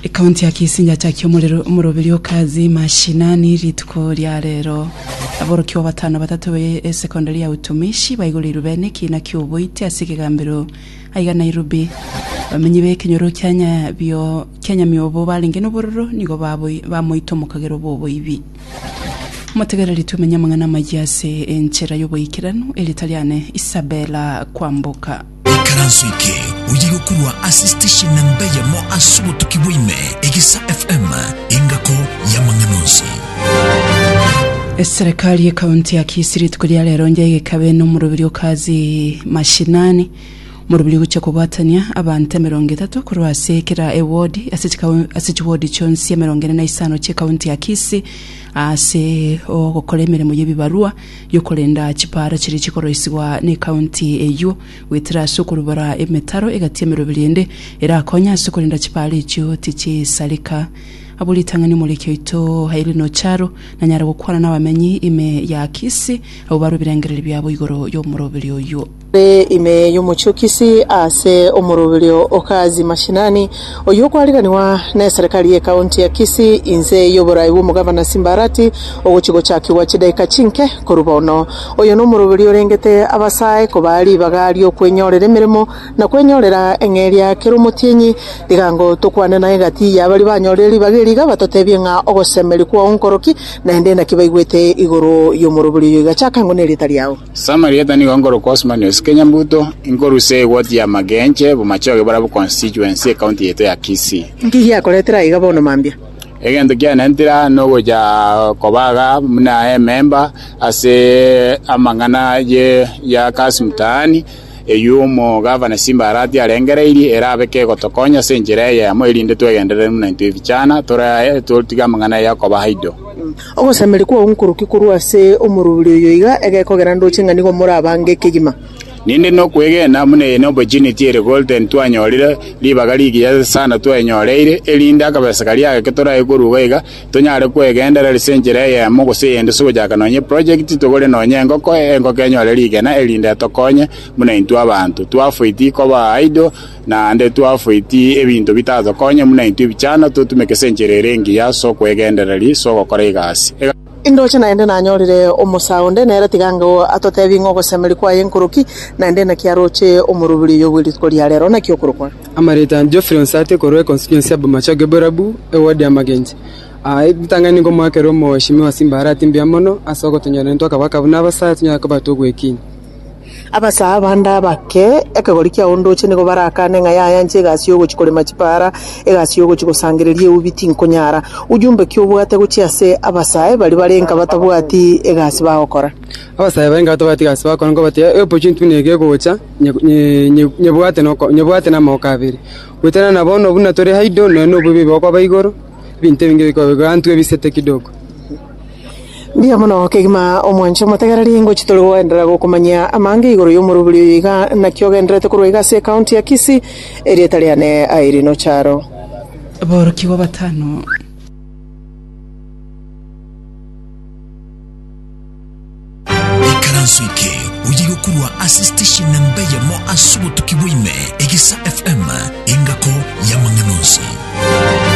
Ekaunti ya Kisinja achakia omorero omoroberi o kazi mashinani rituko ria rero. Aborokigwa batano batato ba esekondari ya utumishi baigoreirwe bene ekiina kia oboiti ase ekegambero aiga Nairobi. Abamenyi ba ekenyoro kia Nyabio kia Nyamiobo barenge nobororo nigo baboi- bamoita omokagero bw'oboibi. Motegereri tomenye amang'ana amayia ase enchera y'oboikeranu, eritariane Isabella Kwamboka. Ikaranso eke oyiga korwa ase station na mbe yamo ase obotuki bwa ime, Egesa FM, engako y'amang'ana onsi. Eserekari y'ekaunti ya Kisii rituko ria rero onde egekabe n'omorobiri o kazi mashinani omorobiri ogochia kobwatania abanto emerongo etato korwa ase kera ewodi ase chikau- ase chiwodi chionsi emerongo ene na isano chi'ekaunti ya Kisii ase ogokora emeremo y'ebibarua yokorenda chipaara chiria chikoroisigwa necounty eyio goetera ase okorubora emetaro egati ya meroberi ende erakonye ase korenda chipaara echio tichisareka. Abwo ritang'ani omoriki oito Irene Ocharo nanyare gokwana nabamenyi ime ya Kisii abwo barwa ebirengererio biabo igoro yomoroberi oyio. Ere ime y'omochokisi ase omoroberio o Kazi Mashinani, oyio okwariranigwa neserekari ye County ya Kisii inse y'oborai bw'omogavana Simbarati ogochia gochakigwa chidaika chinke korwa bono. Oyo nomoroberio orengete abasae kobaa ribaga ri'okwenyorera emeremo na kwenyorera eng'eria kera omotienyi. Rigango tokwane naye gati y'abaria banyorire ribaga eri iga batotebie ng'a ogosemeria kwao nkoroki, naende naki baigwete igoro y'omoroberio oyio iga chaka ng'une erieta riao. Samarieta nigo nkorokwa Osmani Osike Nyambuto, inkorusia egoti ya Magenche, Bomachoge barabwo constituency, ecounty yaito ya Kisii. Inki giakoretera aiga bono mambia? Egento kianentira nogocha koba iga buna ememba ase amang'ana ye ya Kasi Mtaani, eyio omogavana Simbarati arengereirie erabe kegotokonya ase enchera eye yamo, erinde twegenderere buna intwe ebichana, tore aye totige amang'ana aye akoba aido. Ogosameria kwao nkoroki korwa ase omorwori oyo iga egekogera ndoche ng'a nigo morabange ekegima. Ninde nokwegena buna eye n'opportunity ere golden twanyorire, ribaga rigiya sana twaenyoreire, erinde akabesa karia ageke torae koruga iga, Tonyare kwegenderera ase enchera eyemo gose eyende ase ogochaka nonya eprojekti, togore nonya engoko, engoko enyore rigena erinde etokonye buna intwe abanto. Twafoiti koba idle, naende twafoiti ebinto bitatokonye buna intwe ebichano, totumeke ase enchera ere engiya ase okwegendereri ase ogokora egasi. Indoche naende nanyorire omosaa onde, nere tiga ango atotebi ng'a ogosemeri kwaye nkoroki, naende naki aroche omoroberi oyo bwe rituko ria rero, naki okorokwa? Amareeta a Geoffrey onsi ate korwa econstituency ya Bomacho Geborabu, eward ya Magenche. Aa ritang'ani nigo moakera omogoshimi wa Simbara ati mbuya mono ase ogotonyorera intwe akaba akabu na abasaya tonyare koba togwekinya. Abasaya bande abake ekegori kia ondoche nigo barakane ng'a yaya inche egasi y'ogochi korema chipaara, egasi y'ogochi gosangereria eubi tinkonyara. Ujumbe ki obwate gochia ase abasaya baria bare nka batabwati egasi bagokora? Abasaya bare nka batabwati egasi bagokora nigo bateba, E opportunity buna ege egocha, nyebwate namoko abere, goetera nabono buna tore haido, nonya nobobe bokoba igoro, ebinto ebinge bikoba igoro, antwe bisete kidogo. Mbuya mono kegima omwanche omotegererie ngochia tore goenderera gokomanyia amange igoro y'omorobori oyo iga naki ogendererete korwa iga ase ekaunti ya Kisii, erieta riane Irene Ocharo. Aborokigwa batano. Ekaranso eke oye yokorwa ase station na mbeyemo ase obotuki bwaime, Egesa FM, engako y'amang'ana onsi.